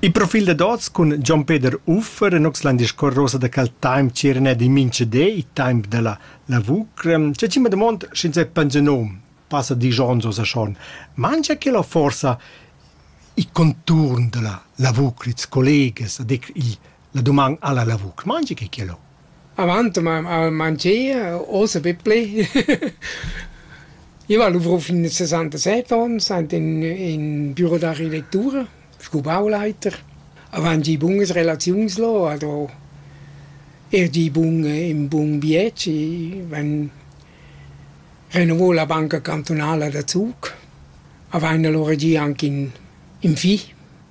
Il profil da dots cun Gian Peter Uffer en Oxland discorrosa da cal time cirne di minche de i time della lavur c'è cima domond sch'ins è pensionom passa di Jonzo sa schon mangia che la forza i conturn della lavur ils colleges ad il la doman alla lavur mangia che che lo Avant m'haun haun mangia, osa bippli. I va luvro fin a sesantaseit ons, aint in in büro d'architettura, scu bauleiter. Avant gi bunas relaziuns lò, ado eir gi bun ün bun vieci, vain renouvo la banca cantunala da Zug. Avaina lura gi anche ün ün fi.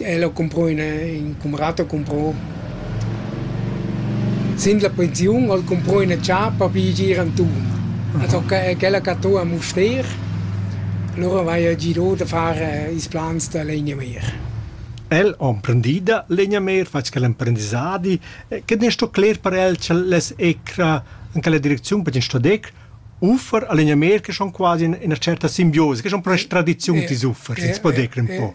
El ho cumprà üna, ün cumrat ho cumprà sin la pensiun ha'l cumprà üna ciapa pi gir anturn. Als ho ch'ella cattà a Mustér, lura vaja girà da far ils plans da legnameer. El ho emprendì da legnameer, fat quel emprendissadi. Quel n'es sto cler per el ch'el less ecra in quella direcziun perché sto der uffer a legnameer che schon quasi ina certa simbiosa, che schon pro tradiziun tils uffers, els po der ün po.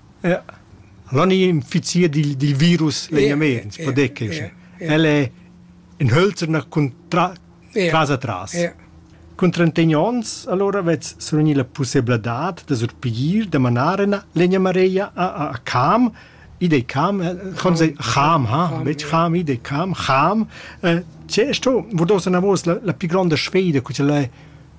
Ja. Allora ni infizier dil, dil virus vegnaments, yeah, podec yeah, yeah, El è in hölzerna cun tra, yeah, tras a tras. Yeah. Cun 31 onns, allora vets survegni la possibilidad da surpigir, da manar ena legna mareia a, a, a Cam, idei Cam, conse eh, Cham, ha, betg Cham, idei Cam, Cham. Eh, c'è sto, vodos na vos la, la più grande sfida, che ce l'è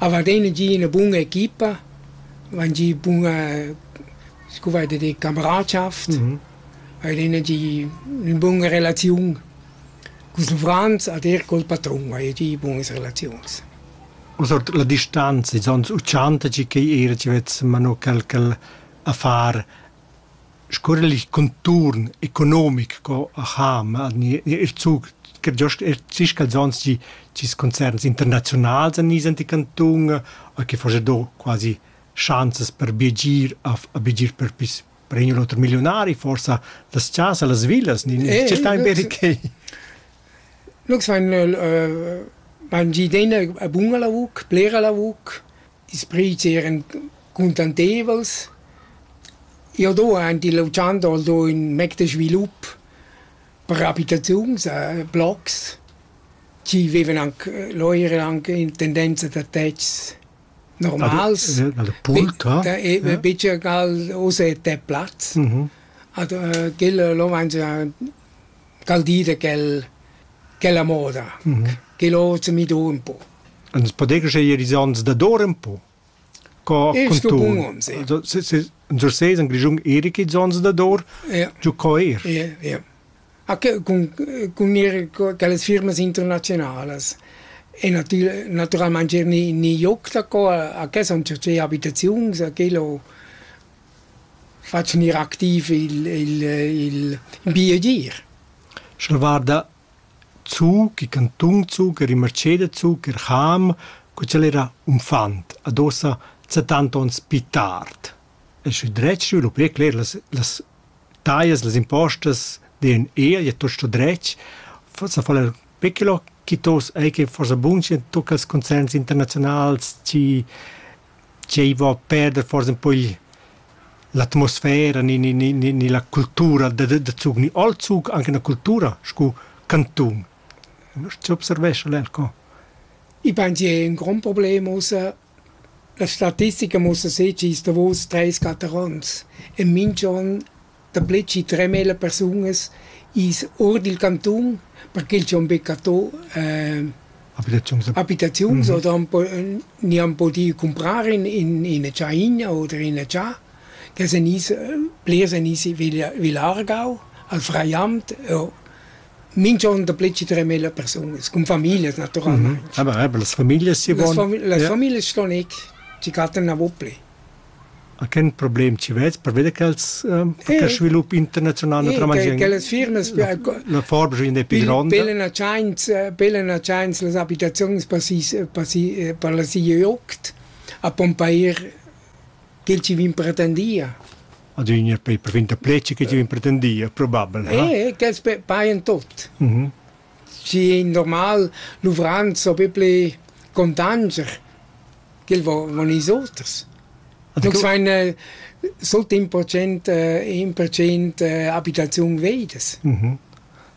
Avar ina gi ina buna equipa, van gi buna scu vai da dir camaradschaft, haver ina gi ün buna relaziun culs uffants ed eir col patrun haja gi bunas relaziuns. Ussa la distanza, ils ons u tschantagi ch'ei era chi vezza mano quel ch'el a far Scurrel il conturn economic co aha, ma gnir gnir ir zug che giost er zich quels ons chi chis concerns internaziunals en nis ant i cantun e chi forsa do quasi schanzas per biagir a f- a biagir per pis per in u l'oter milliunari forsa las chasa, las villas, nin Eh, tgei tain beri quei? Lux vain lö vain gi idea buna lavur, blera lavur, Ils prüts eran cuntanteivels. Jau do aint il Ochando do ün mec da svilup per abitaziuns, blocs chi vivan anc, là eira anc in tendenza da tetgs normals. Bicher gal uss è te plaz. Ad quella là vain se dal di da quel quella moda che l'hoz mi do ün po. Ans podegas eir ils ans dador ün po? Co Il stupun ons, ja. Also, se- se- In so seis in Grischun erik ils ans dador, Ja. giò co eir. Ja, ja. Ah, che- Con, con mir co- quelle firme internazionalas. E natil- naturalmente ni, ni joc da qua, a che sono certe abitazioni, a quello Far gnir activ il il il ün bi agir. Sch'el guarda zu, che cantun zu, che rimarceda zu, che Cham, co ch'el era unfant, adossa settanta ons pi tard. E sü dret sü lu pli cler las las taglias, las impostas den eir, ja tuot sto dretg, forsa fa'l er pechelò chi tos ei che forsa bun schi tocca als concerns internaziunals, chi Tgei vo a perder forsa in po igl l'atmosfera ni ni ni ni ni la cultura da da da Zug ni al Zug anche una cultura sco cantun. Sche observescha el co? I vain gia ün grond problem ussa. La statistica muossa sez chi sta vus treis, quatter ons e minch'on Daplè chi tremel a persunas i's our dil cantun perché ch'han be cattà abitaziuns abitaziuns oder han po gnü han pudü cumprar in in ina tschaina oder ina cha che sun i's blers sun i's villa Aargau al Freiamt o minch'on daplè chi tremel a persunas cun famiglias natüralmaing. Aber eben las Familias sie wollen. Las famiglias ston eir chi cattan navo plü. a quel problem chi vez perveda ch'els per svilup internaziunal naturalmaing quellas firmas la forgia è più gronda pelen a tschains pelen a tschains las abitaziuns per si per si per la sia joct a pompair quel chi vin pretendia adüna per finta pleci che ti pretendia probabel eh quels paian tot mhm Schi in normal luvran s'ho be ple contanscher ch'el vo von ils oters. Non sain sul temp procent in percent abitaziun veidas.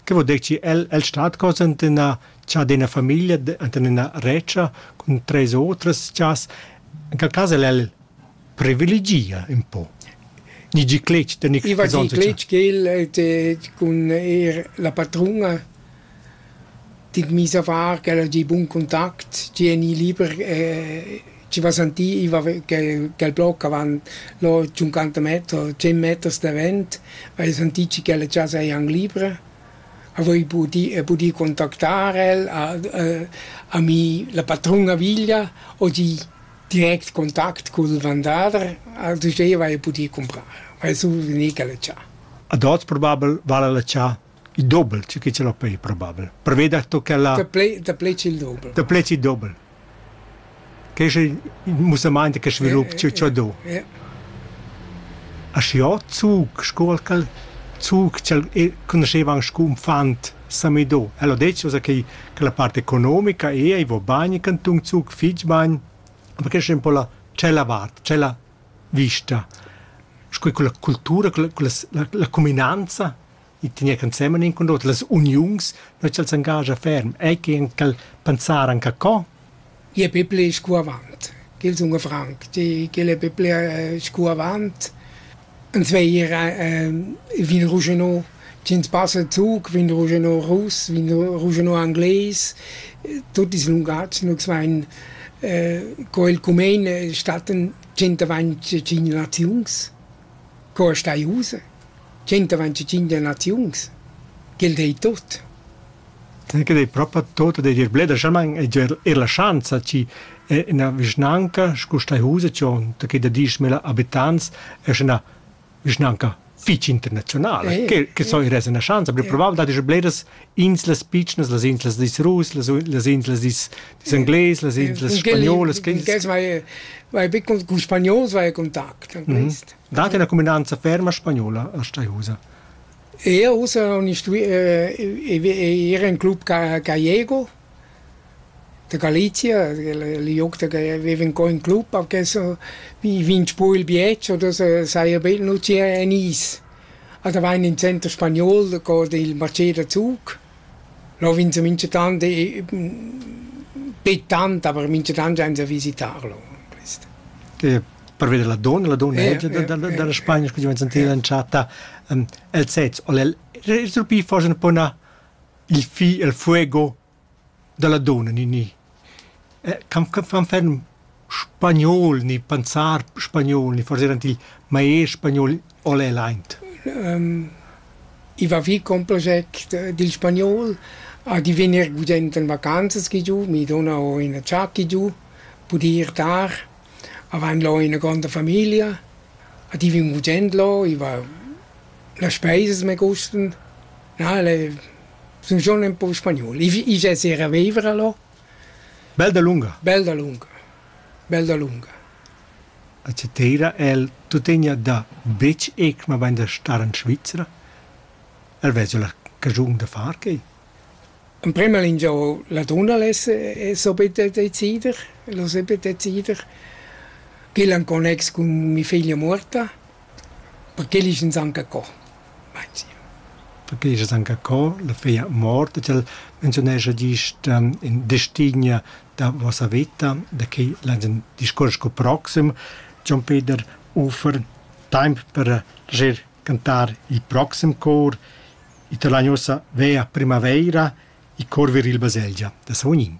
Che vo dir chi el el stat cos ant üna chadina famiglia, ant üna regia cun tres otras chas. In quel cas el el privilegia ün po. Ni gi cletg da ni I va di cletg ch'el cun eir la patruna dit mis a far ch'ella gi bun contact, gi eni liber e ci va sentì, i va ch'el bloc avant lo 50 meter, 100 meters davent, va sentì chi ch'ella già saja an libra, a voi pudì pudì contactar el, a mi la patruna veglia o gi Direct contact cul vendader al duveva ei pudì cumprar, vai su vegnir a letschar. Ad oz probabel vala letschar il dobel, tü che ce l'ho pei probabel. Preveda to che la... Da plei, da plei il dobel. Da plei il dobel. Che è il musamant che svilup ciò ciò do. A scio zug, scuol cal zug, cel conosceva anche un fant Samido. El ho detg ussa che che la part economica è ei vo bagn cantun Zug fich bagn, ma che sche un po la tschella vart, tschella vista. Sco quella cultura, quella, quella la, cuminanza, i tegner ensemen in con l'oter, las uniuns, noi ch'el s'engagia ferm, ei che anche pensar anche co, I e pipli scu avant, ch'el sun franc, ch'el e pipli scu avant. Ins vei ir vin ruschenò, ch'ins passa zuc, vin ruschenò russ, vin ruschenò angles, tuot ils lungatgs nus vain co el cumein stattan tschient avant tschient naziuns. Co es stai ussa? Tschenta ventitschinch naziuns? Quel dei tuot. Quel dei propa tuot ed eir bler e giò eir la schanza chi üna vischnanca scu stai ussa dschond che da dieschmila abitants es üna vischnanca fich internaziunala. Quel so ir esa üna schanza, però probabel dat eir bleras inslas pitschnas, las inslas dis rus, las, las inslas dis, dis englais, las inslas spagnolas. Vai, vai big con, con spagnols vai contact an quest. Mm -hmm. Dat una cuminanza ferma spagnola a Staiusa? Io usa un istu era in club gallego Da Galizia, liug da che viven co in club, perché so vegn scu il bietsch oder so saja be nu gia en is. A da vain in center spagnol co il marché da zuch. Là vegn se minchatant be tant, aber minchatant jain se a visitar là quist. Che per veder la donna, la donna dalla Spagna scu giovens sentida entschatta els sezs. Ol el surpì forsa un po 'na il fi e'l fuego da la dunna Nini. Can fan ferm spagnol ni panzar spagnol ni forsa eran til maester spagnol o l'he laint? I va vi con plascher dil spagnol a divegnir gudent en vacanzas chi giu. Mi duna ho ina tschat chi giu, pudi ir tar, avain lo ina gronda famiglia, a divin gudend lo, i va Las speisas me gustan, na el e sun schon ün po spagnol. I i giazerà a viver a là. Bel dalunga. Bel dalunga. Bel dalunga. A Citeira el tuttegna da betg eck, mabain da star in Svizra. El vezza la cagiun da far quai. In prema lingiò la tunnels e so bitte decider, lo se bitte decider, ch'el è in connex cun mi figlia morta. Perché el es anca co, meinzi? Perché el es anca co. La figlia mort, tg'el menziunescha gist in destin da vossa veta, da que lain ün discuors cul proxim. Jon Peder offer taimp per rir, cantar il proxim cor. I to lain uossa veir a primavaira, i corver il baselgia da Savognin.